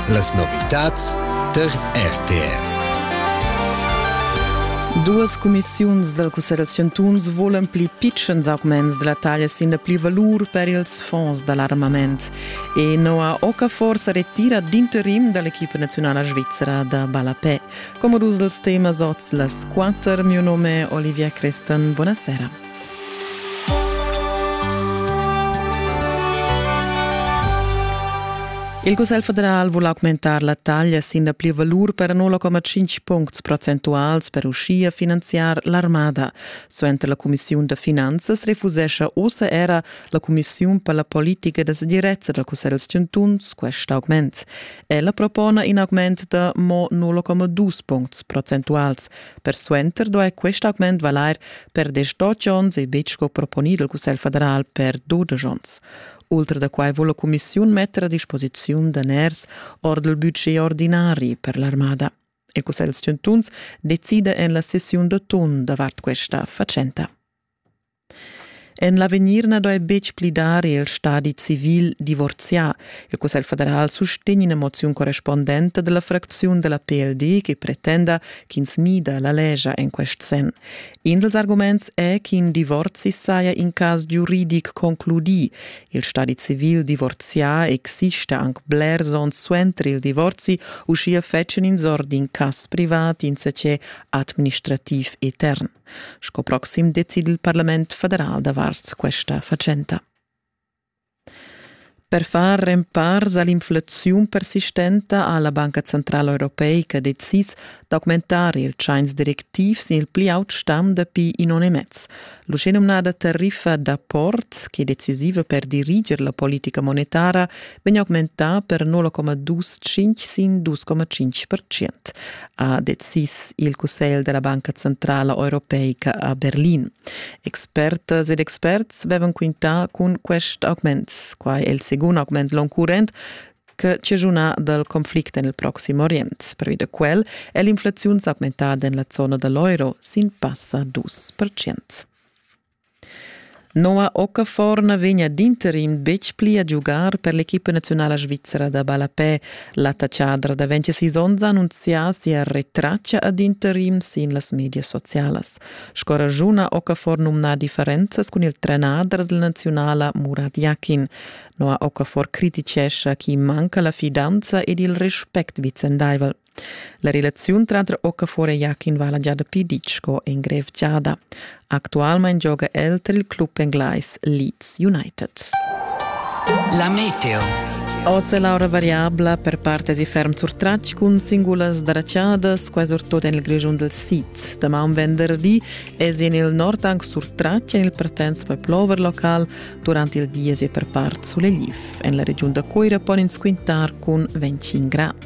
Las novitads tar RTR. Duas cumissiuns dal Cussegl da chantuns volan pli pitschens augments da la taglia sin la plivalur per ils fonds da l'armament. E Noah Okafor sa retira d'interim da l'equipa naziunala svizra da ballapè. Come dus els temas oz las quatter, mio nome Olivia Crestan. Buonasera. Il Cussegl federal vul augmentar la taglia sin la plivalur per 0,5 puncts procentuals per uschia finanziar l'armada. Suenter la cumissiun da finanzas refusescha ussa era la cumissiun per la politica da segirezza dal Cussegl chantuns quest augment. Ella propona in augment da mo 0,2 puncts procentuals Persuenter duai quest augment valair per desch onns e betg sco proponì dal Cussegl federal per dudesch onns. Ultra da quai vul la cumissiun metter a disposiziun daners ord il budget ordinari per l'armada. Il Cussegl chantuns decida en la sessiun d'atun davart questa fatschenta. En l'avegnir na doi betg pli dar il stadi civil divorzià. Il Cussegl federal sustegn ina moziun correspondenta della fracziun della PLD che pretenda ch'ins mida la legia en quest sen. In dels arguments è ch'in divorzi saja in cas giuridic concludì. Il stadi civil divorzià exista anc blers onns suenter il divorzi, uschia fetschen ins or d'in cas privat insece administrativ etern. Sco proxim decida il parlament federal davart questa fatschenta. Per far rempars a l'inflaziun persistenta ha la Banca Centrala Europeica decis d'augmentar il tschains directivs il pli aut stam dapi in onn e mez. L'uschenumnada tariffa d'apport, che è decisiva per diriger la politica monetara, vegn augmentà per 0,25 sin 2,5 percent. ha decis il Cussegl della Banca Centrala Europeica a Berlin. Expertas ed experts vevan quintà cun quest augment, quai è il secund augment l'on current, che cigiuna dal conflict en il Proxim Orient. Pervi da quel è l'inflazione augmentada en la zona dell'euro sin passa 2%. Noa Okaforna vegnia d'interim betg pli a giugar per l'equipa naziunala svizra da ballapè. L'attatschadra da 26 onns ha annunzià sia retraccia ad interim sin las medias socialas. Sco ragiuna Okafor numna differenzas cun il trenader della naziunala Murad Yakin. Noa Okafor criticescha chi manca la fidanza ed il respect vicendaivel. La relaziun tranter Okafor e Jakin vala gia dapi ditg sco engrevgiada. Actualmain gioga el tar il club englais Leeds United. La meteo. Oz è l'aura variabla per partes e ferm surtratg cun singulas dracciadas, quasi surtut en il Grischun del Sid. Damaun venderdi è en il nord anche surtratg en il Partenz per plover local durante il dies e per part sulegli. En la regiun da Coira pon ins quintar cun 25 gradi.